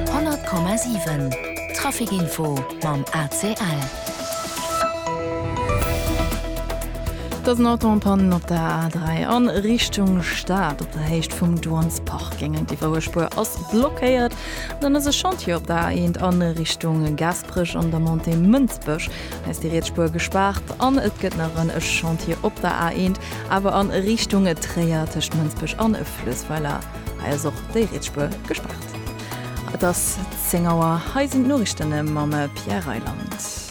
100,7 Trafic-Info mam ACL. Et ass en Autopann op der A3 a Richtung Stad. Op der Héicht vum Duansparking an d'Iwwerhuel Spuer ass blockéiert. Dann ass e Chantier op der A1 a Richtung Gasperech an der Montée Mënsbech. Hei ass déi riets Spuer gespaart. An et gëtt nach en Chantier op der A1, awer a Richtung Tréier tëscht Mënsbech a Fluessweiler. Hei ass och déi Rietsspuer gespaart. Et ass 10 Auer, hei sinn d'Noriichtene mam Pierre Reyland.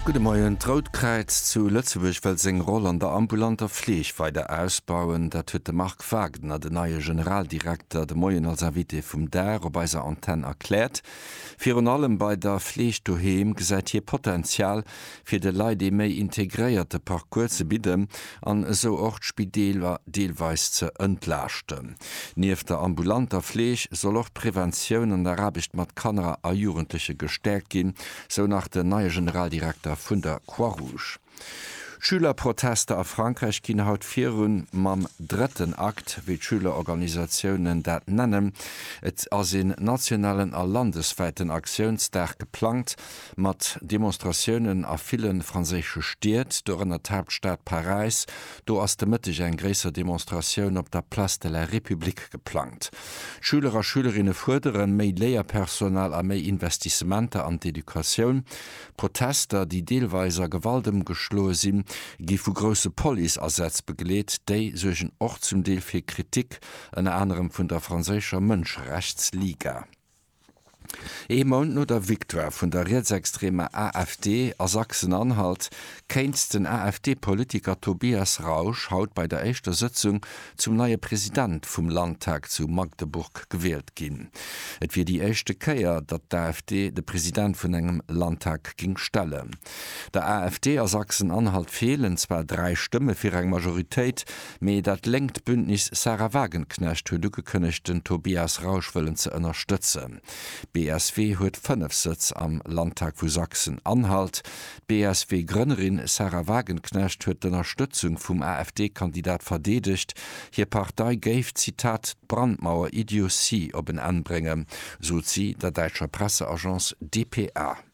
Gudde Moien. D'Rout Kräiz zu Lëtzebuerg wëll seng Roll an der ambulanter Fleeg weider ausbauen. Dat huet de Marc Wagner, den neie Generaldirekter, de Moien als Invité vum Dag op eiser Antenn erkläert. Virun allem bei der Fleeg doheem gesäit hie Potenzial, fir de Leit ee méi integréierte Parcours ze bidden an esou och d'Spideeler deelweis ze entlaaschten. Nieft der ambulanter Fleeg soll och d'Preventioun an der Aarbecht mat Kanner a Jugendleche gestäerkt ginn, sou nach den neie Generaldirekter vun der Croix-Rouge. D'Schülerprotester a Frankräich ginn haut virun mam drëtten Akt, wéi d'Schülerorganisatiounen dat nennen. Et ass een nationalen a landeswäiten Aktiounsdag geplangt, Mat Demonstratiounen a ville franséische Stied, dorënner d'Haaptstad Paräis, do ass de Mëtteg eng gréisser Demonstratioun op der Place de la République geplangt. Schüler a Schülerinne fuerderen méi Léierpersonal a méi Investissementer an d'Educatioun. D'Protester, déi deelweis a Gewalt ëmgeschloe sinn, gi vu grousse Police-Asätz begleet. Déi suergen och zum Deel fir Kritik, ënner anerem vun der franséischer Mënscherechtsliga. Ee Mount no der Victoire vun der rietsextremer AfD a Sachsen-Anhalt kéint den AfD-Politiker Tobias Rausch haut bei der éischter Sëtzung zum neie President vum Landtag zu Magdeburg gewielt ginn. Et wier déi éischte Kéier, datt d'AfD de President vun engem Landtag géing stellen. Der AfD a Sachsen-Anhalt feelen zwar dräi Stëmme fir eng Majoritéit, Mee dat lénkt Bündnis Sahra Wagenknecht huet ugekënnegt, den Tobias Rausch wëllen ze ënnerstëtzen. D'BSW huet 5 Sëtz am Landtag vu Sachsen-Anhalt. D'BSW-Grënnerin Sahra Wagenknecht huet d'Ënnerstëtzung vum AfD-Kandidat verdeedegt. Hir Partei géif, Zitat, d'Brandmauer-Idiotie op en Enn bréngen, sot si der däitscher Presseagence dpa.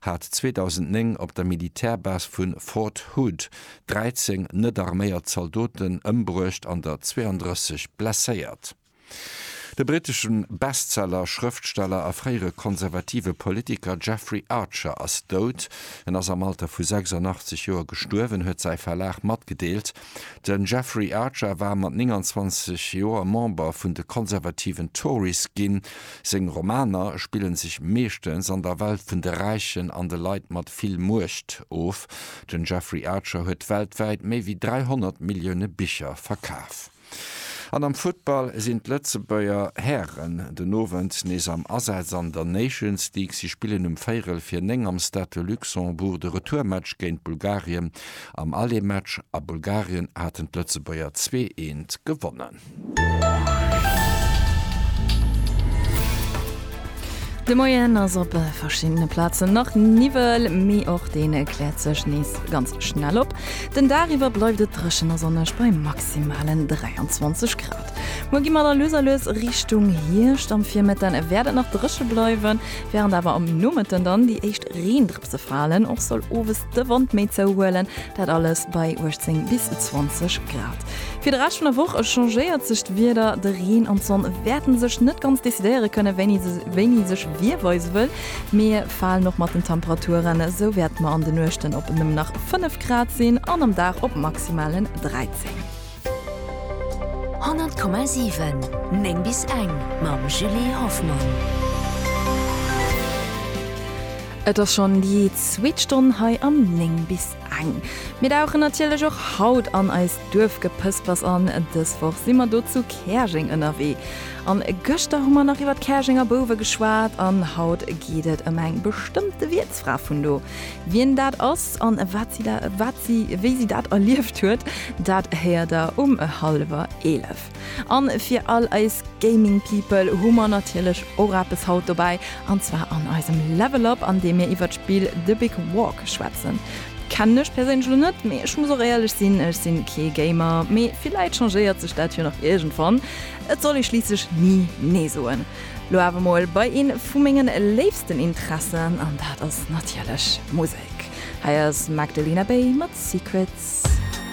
hat 2009 op der Militärbase vu Fort Hood 13 net-arméiert Zaldoten ëmbruecht an der 32 blesséiert. De brittesche Bestseller Schrëftsteller a fréiere konservative Politiker Jeffrey Archer ass dout. En ass am Alter vu 86 Joer gestuerwen, huet säi Verlag matgedeelt. Den Jeffrey Archer war mat 29 Joer Member vun de konservativen Tories ginn. Seng Romaner spillen sech meeschtens an der Welt vun de Räichen an de Leit mat vill Muecht of. Den Jeffrey Archer huet weltwäit méi wéi 300 Millioune Bicher verkaf. An am Futtball sinn d'Lëtzebuerger Hären den Owend nees am Asaz an der Nations League. Si spillen um véirel fir 9 am Stade de Luxembourg de Retourmatch géint Bulgarien. Am Alleenmatch a Bulgarien haten d'Lëtzebuerger zwee eent gewonnen. De Moien ass op verschiddene Plazen nach Niwwel, mee och dee kläert sech nees ganz schnell op. Den Dag iwwer bleift et dréchen a sonneg bei maximalen 23 Grad. Muer gi mer da lues a lues Richtung Hierscht. Am Virmëtten wäert et nach dréche bleiwen, wärend awer am Nomëtten dann déi éischt Reendrëpsen Schapp ze falen. Och soll owes de Wand méi zouhuelen, dat alles bei 18 bis 20 Grad. Fir de Rescht vun der Woch changéiert sech d'Wieder, de Reen an d'Sonn wäerten sech net ganz decidéiere kënnen, wéini se wéini sech wie weise wëll. Mir falen och mat den Temperaturen, esou wäerte mer an de Nuechten op nëmmen nach 5 Grad sinn an am Dag op maximalen 13. 100,7 9 bis eng mam Julie Hoffmann. Et ass schonn déi zweet Stonn hei am 9 bis eng. Mir dauchen natierlech och haut an eist Duerfgepëspers an. Dës Woch si mer do zu Käerjeng ënnerwee. An gëschter hu mer nach iwwer d'Käerjenger Bouwe geschwat an haut geet et ëm eng bestëmmte Wiertsfra vun do. Wien dat ass an wat si da, wat si, wéi si dat erlieft huet, dat héiert der um hallwer 11. An fir all eis Gaming People hu mer natierlech och eppes haut dobäi, an zwar an eisem Level Up an deem mir iwwert d'Spill The Big Walk schwätzen. Kennen ech perséinlech elo net, mee ech muss och éierlech sinn, ech sinn kee Gamer, mee villäit changéiert sech dat jo nach iergendwann, et soll ee schliisslech ni nee soen. Lo awer mol bei een vu mengen léifsten Interessen an dat ass natierlech Musek. Hei ass Magdalena Bay mat Secrets.